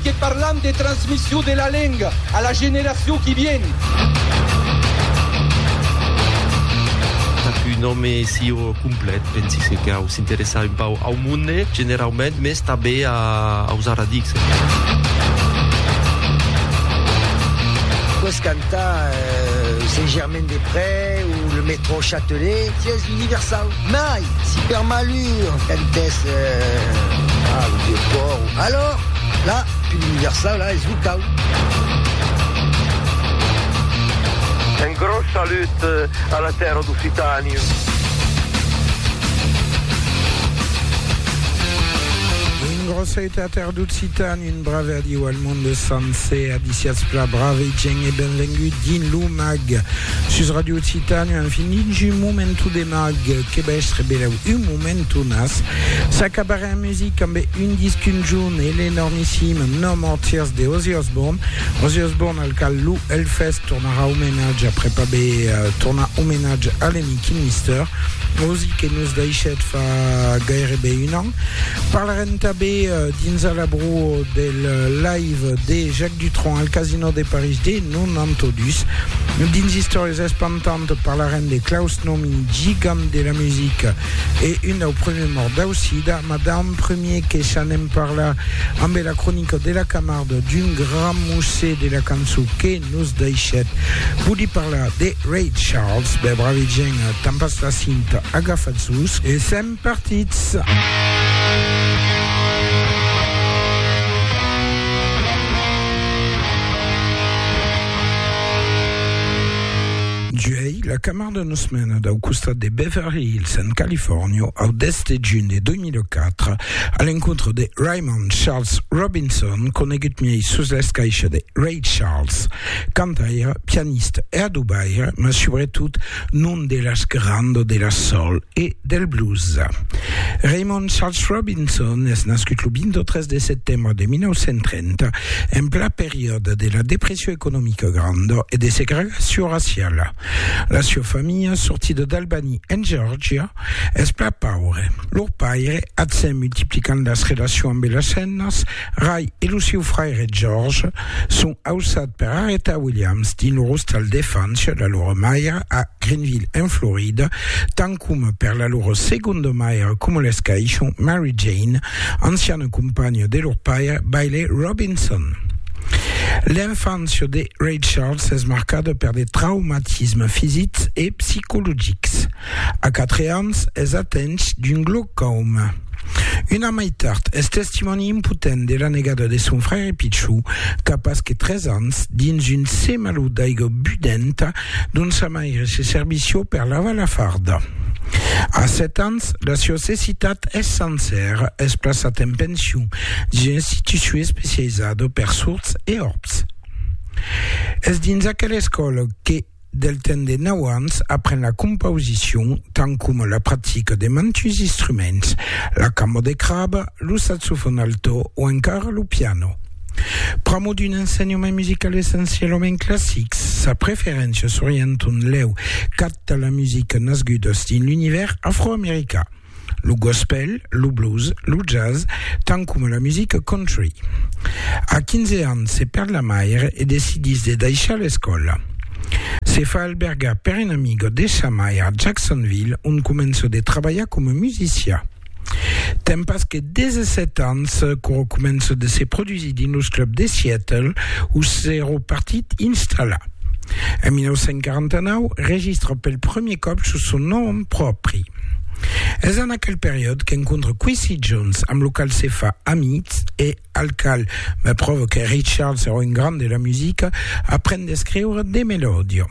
Que parlam de transmission de la lenga a la generacion qui vien. Pas qu'un òme sieu complet, pensi se cau s'interessar un pauc au monde generaument, mès tanben aus arradics. Aqueth cantar Saint-Germain-des-Prés o le Métro Châtelet sies universau. Mai, si per malur cantès a lo dieu Thor, alòr la pil universau la es lo cau. Un gròs salut a la tèrra d'Occitània. Grosseita a terra. D'occitan, un brave adiu al monde sancer, abiciatz pla brave e gènt e benvengut dins lo mag sus Radio Occitània, an finit un momentu de mag, que bèstre belèu un momentu nas, s'acabarè en music ambe un disc un junh e l'enormissim No More Tears de Ozzy Osbourne, Ozzy Osbourne al cal lo Hellfest tornarà omenatge après pas be tornar omenatge a l'amic Kilmister, Ozzy que nos daishèt fa gaire be un an. Parlarem tanben dins a l'abrò del live de Jacques Dutron al Casino de París de 92. Dins Istòrias espantantes parlarem de Klaus Nomi, gigant de la musica e un dau premier mòrt dau sida, mas d'an premier que s'anem parlar ambe la cronica de la Camarde d'un grand musèu de la cançó que nos daishèt. Voli parlar de Ray Charles? Be, bravi gent, tanpastà cinta, agafatz-vos e sèm. partits. Juèi, la Camar de nos mena dau costat de Beverly Hills en Califòrnia au 10 de junh de 2004 a l'encontre de Raymond Charles Robinson, conegut miei sus l'escaisha de Ray Charles, cantaire, pianiste e adobaire, mas subretot non de l'esquerando de la soul e del blues. Raymond Charles Robinson es nascut lo 23 de setembre de 1930, en plan periòde de la depression economica granda e de segregacion raciala. La sua familha, sortida d'Albany, en Georgia, es plan paure. Lor paire, atzèn multiplicant las relacions ambe las femnas, Ray e lo siu fraire George son ausat per arretar Williams dins lo rostal d'efanche da lor maire a Greenville en Florida, tant coma per la lor segonda maire coma l'escaishon Mary Jane, anciana companha de lor paire Bailey Robinson. L'enfància de Ray Charles es marcada per de traumatismes fisics e psicologics. A quatre ans es atench d'un glaucòma. Un an mai tard es testimòni impotent de la negada de son fraire pichou qu'a pas que tres ans dins un semalhut d'aiga budenta dont sa maire se servissió per lavar la farda. A sèt ans la siá cecitat es sencèra, es plaçat en pension dins una institucion especializada per sords e òrbs. Es dins aquela escòla que Del temps de nau ans apren la compausicion tant coma la practica de mantuns instruments, la camo de craba, lo saxofòn alto o encara lo piano. Pr'amor d'un ensenhament musical essencialament classic, sa preferéncia s'orienta en lèu cap tà la musica nasgudas dins l'univèrs afroamericà. lo gospèl, lo blues, lo jazz, tant coma la musica country. A 15 ans se perd la maire e decidís de daishar l'escòla. Se fa albergar per un amiga de sa maire a Jacksonville ont comença de trabalhar coma musicià. Ten pas que 17 ans qu'ora comença de se produsir dins los clubs de Seattle où s'èra partit installar. En 1949 registra pel premier còp sus son nom pròpri. Es en aquel periòd qu'encontre Quincy Jones, amb lo cal se fa amic e al cal me pròve que Ray Charles èra un grand de la musica, aprend d'escriure de melòdia.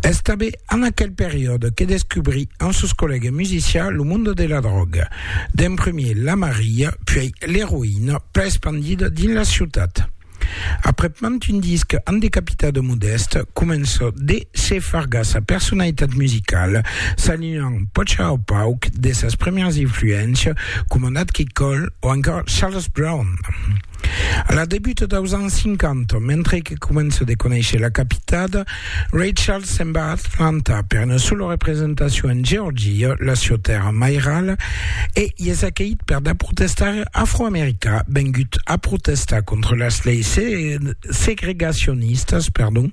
Es tanben en aquel periòd que descubri amb sos collègues musicians lo monde de la dròga, d'en premier la Maria, puèi l'eroïna, plan espandida dins la ciutat. Aprèp mand un disc amb de capità de Modest, comença de se fargar sa personalitat musicala, s'alinhant pòcha au pauc de sas primièras influéncias coma Nat King Cole o encore Charles Brown. A la debuta daus ans 50, mentre que comença de conéisher la capitada, Rachel se'n va a Atlanta per una sola representacion en Georgia, la sieu tèrra mairala, e i es acaït per de protestaires afroamericà vengut a protestar contra las leis segregacionistas, perdon,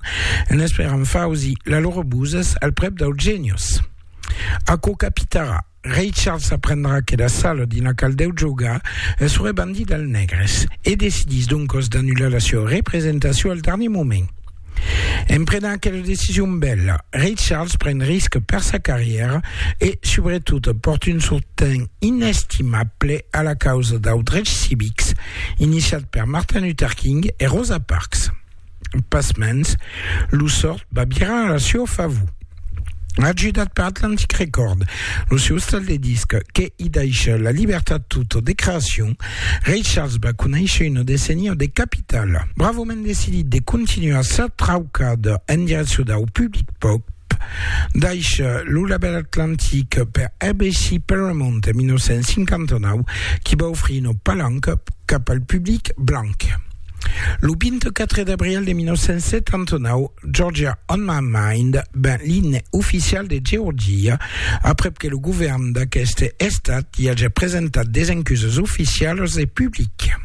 en esperant fausi la lor buzes al prèp dau Genius. Aquò capitarà. Rei Charles aprendrà que la sala dina qual deu jogar es rebandida al Negres e decidís doncòs d'annular la sua representacion al darnier moment. En prenent aquela decision bèla, Rei Charles pren risque per sa carrièra e, subretot, pòrt un sosten inestimable a la causa dau drechs civics iniciat per Martin Luther King e Rosa Parks. Pasmens, lo sòrt va virar a la sieu favor. Ajudat per Atlantic Record, lo sieu estal de disc que i daisha la libertat tota de creacion, Ray Charles va conéisher una decennia de capital. Bravament decidit de continuar sa traucada en direccion dau public pop, daisha lo labèl Atlantic per ABC Paramount en 1959, qui va ofrir una palanca cap al public blanc. Lo 24 d'abril de 1979, Georgia on my mind ben l'imne oficial de Georgia, aprèp que lo govèrn d'aqueste estat i aja presentat d'esencusas oficialas e publicas.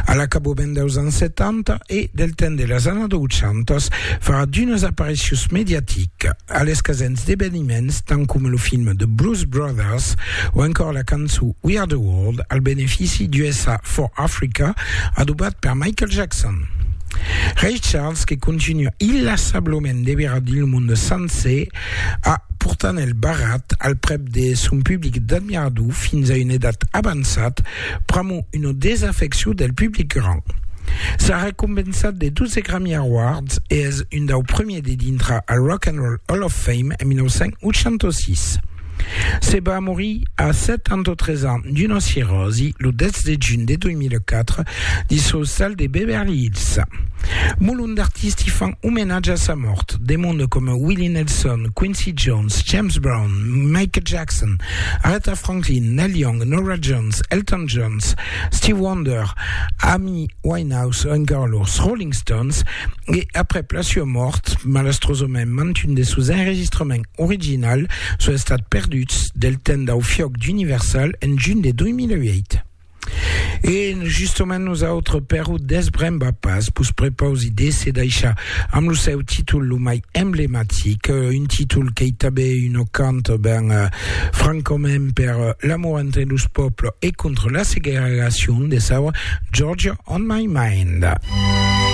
A l'acabament deus ans 70 e del temps de las annadas 80, farà d'unas aparicions mediaticas. A l'escasens d'eveniments tant coma lo film The Blues Brothers o encòr la cançó We Are The World al benefici d'USA for Africa adobat per Michael Jackson. Ray Charles que continua illassablament de virar dins lo monde sancer a portant el barrat al prèp de son public d'admirador fins a una edat avançat pr'amor una desafeccion del public grand. S'a recompensat de 12 Grammy Awards e es un dau premiers de dintra al Rock and Roll Hall of Fame en 1986. Se va morir a 73 ans d'una cirròsi lo 10 de juny de 2004 dins son sal de Beverly Hills. Molon d'artisti fan omenatge a sa mòrt, de monde coma Willie Nelson, Quincy Jones, James Brown, Michael Jackson, Aretha Franklin, Neil Young, Norah Jones, Elton Jones, Steve Wonder, Amy Winehouse o encara los Rolling Stones, E aprèp la sua mòrt, malastrosament mantun de sos enregistrament original son estats perduts del temps dau fiòc d'Universal en junh de 2008. E justament nosautres per o desbrembar pas, vos prepausi de se daishar amb lo seu títol lo mai emblematic, un títol qu'ei tanben una cant ben francament per l'amor entre los pòbles e contra la segregacion de saur Georgia on my mind.